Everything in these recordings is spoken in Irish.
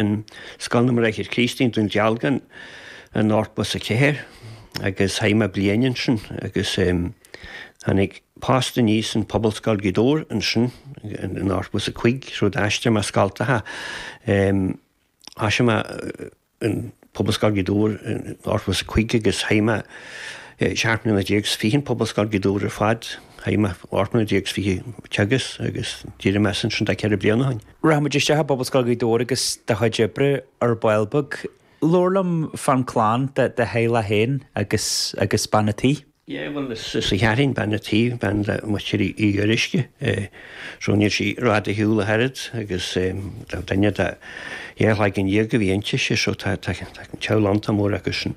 in Scoil na mBráithre Críostaí i nDún Dealgan in 84 agus chaith mé bliain ansin agus tháinig post aníos in Pobalscoil Ghaoth Dobhair ansin in 85, rud a d'aistrigh mé scoltacha. Thosaigh mé in Pobalscoil Ghaoth Dobhair in 85 agus chaith mé 17 mbliana is fiche in Pobalscoil Ghaoth Dobhair ar fad, chaith mé 18 mbliana is fiche ag teagasc agus d'éirigh mé as ansin tá ceithre bliana ó shin. Rachaidh muid isteach i bPobal Scoil Ghaoth Dobhair agus do chuid oibre ar ball beag. Labhair liom fán clann, do theaghlach féin agus agus bean a tí. Yeah bhuel is í Kathryn bean a tí, bean de mhuintir Uí Fhuaruisce, so níl sí rófhada ar shiúl ach oiread agus tá duine de dhá chloigeann déag a bhí intise, so tá teaghlach iontach mór acu sin.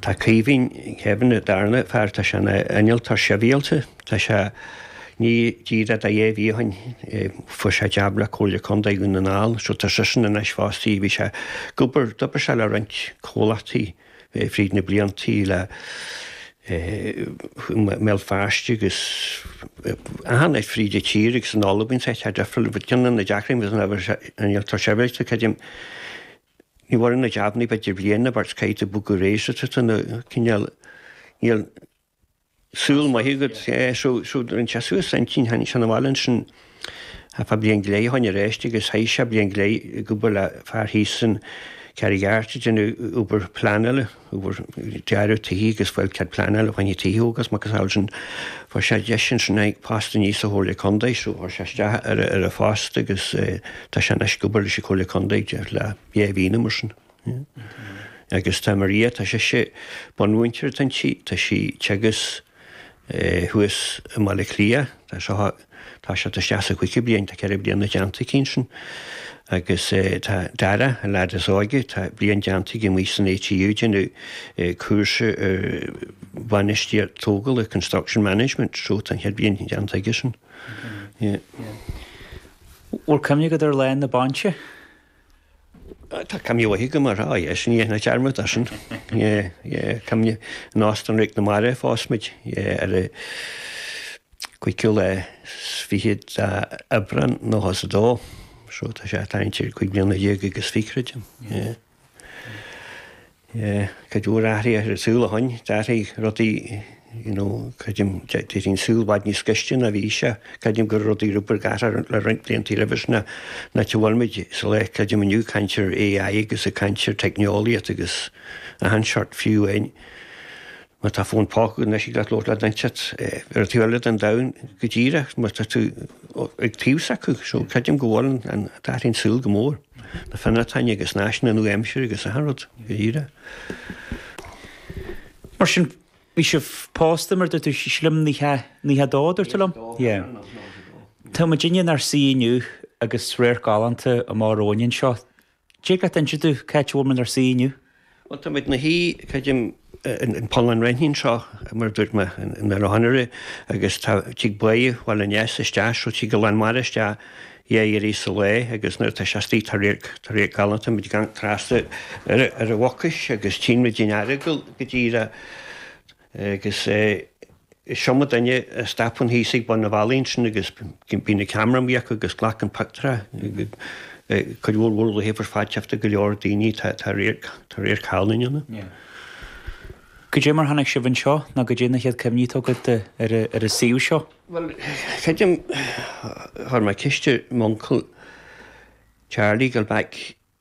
Tá Caoimhín, Kevin, an darna fear, tá sé ina innealtóir sibhialta, tá sé, i ndiaidh díreach dhá mhí ó shin, fuair sé jab le Comhairle Contae Dhún na nGall, so tá seisean anois fostaithe, bhí sé ag obair, d'obair sé le roinnt comhlachtaí fríd na blianta le i mBéal Feirste agus áiteanna fríd an tír agus in Albain, saghas, tá difriúil, but ceann de na deacrachtaí ag innealtóir sibhialta, creidim. Ní mhaireann na jabanna b'fhéidir bliain nó beirt caithfidh tú bogadh ar aghaidh so tá tú cineál níl saol maith agat so so rinne sé suas a intinn tháinig sé 'na bhaile ansin fá bhliain go leith ó shin arís agus chaith sé bliain go leith ag obair le fear thíos in Carraig Airt ag déanamh obair pleanála. obair dearadh tithe agus ag fáil cead pleanála fá choinne tithe agus a macasamhail sin fuair sé deis ansin tháinig post aníos sa Chomhairle Contae so chuir sé isteach ar an ar an phost agus tá sé anois ag obair leis an Chomhairle Contae déarfainn le dhá mhí nó mar sin agus tá Maria tá sise bunmhúinteoir atá inti tá sí ag teagasc thuas i mBaile Átha Cliath. Tá sí, tá sí, tá sí sa chúigiú bliain, tá ceithre bliana déanta aici ansin. Agus tá Dara, an lead is óige, tá bliain déanta aige amuigh san ATU, ag déanamh cúrsa ar bhainistíocht tógála, construction management, so tá an chéad bhliain déanta aigesean. Bhfuil cuimhne agat ar lá na bainise? Tá cam fhiú uaithe agam, ar fad. Yes, ní dhein na dearmad asainn. Yeah, yeah, cam fhiú. Nós don Réic na Mara a phós muid, yeah, ar an gcuiiciú le 22 Aibreán 1902. So tá sé, tá an tír cúig bliana déag agus fichre agam, yeah. Cuid mhór athraithe ar an saol ó shin. D'athraigh rudaí you know creidim déarfainn saol i bhfad níos gaiste ná a bhí sé. Creidim gur rudaí rud beag athraithe le roinnt blianta roimhe sin ná a bhfuil muid sa lá creidim inniu ag caint ar AI agus ag caint ar teicneolaíocht agus achan seort fiú in Tá fón póca anois, thig leat labhairt le duine inteacht ar an taobh eile den domhan go díreach, mar tá tú ag taobh s'acu. So, creidim go bhfuil an d'athraigh an saol go mór, na fionnachtain agus na háiseanna nua aimsire agus achan rud go díreach. Mar sin, bhí sibh pósta mar a dúirt tú, sílim i nócha dó a dúirt tú liom? Yeah. Tá muidinne inár suí inniu agus radharc galánta amach romhainn anseo. Dtig leat inse dúinn cá háit a bhfuil muid inár suí inniu? Bhuel, tá muid 'na suí, creidim, in Poll an Raithnigh anseo, mar a dúirt mé in ar anuraidh, agus tá tig Bá Bhaile an Easa, isteach, so tig an lán mara isteach, dhá iarraidh sa lá, agus nuair atá sé astoigh tá radharc, tá radharc galánta, tá muid ag amharc trasna ar an Mhucais agus tchíonn muid an Earagail go díreach. Agus is iomdha duine a stopann thíos ag bun an bhealaigh sin agus bíonn an ceamara amuigh acu agus glacann pioctúirí. Cuid mhór mhór laethibh ar fad teachta go leor daoine tá radharc galánta ann. Goidé mar tháinig sibh anseo nó goidé na chéad cuimhní atá agat ar an suíomh seo? Bhuel, creidim chuir mé ceist ar m'uncail Charlie dul back.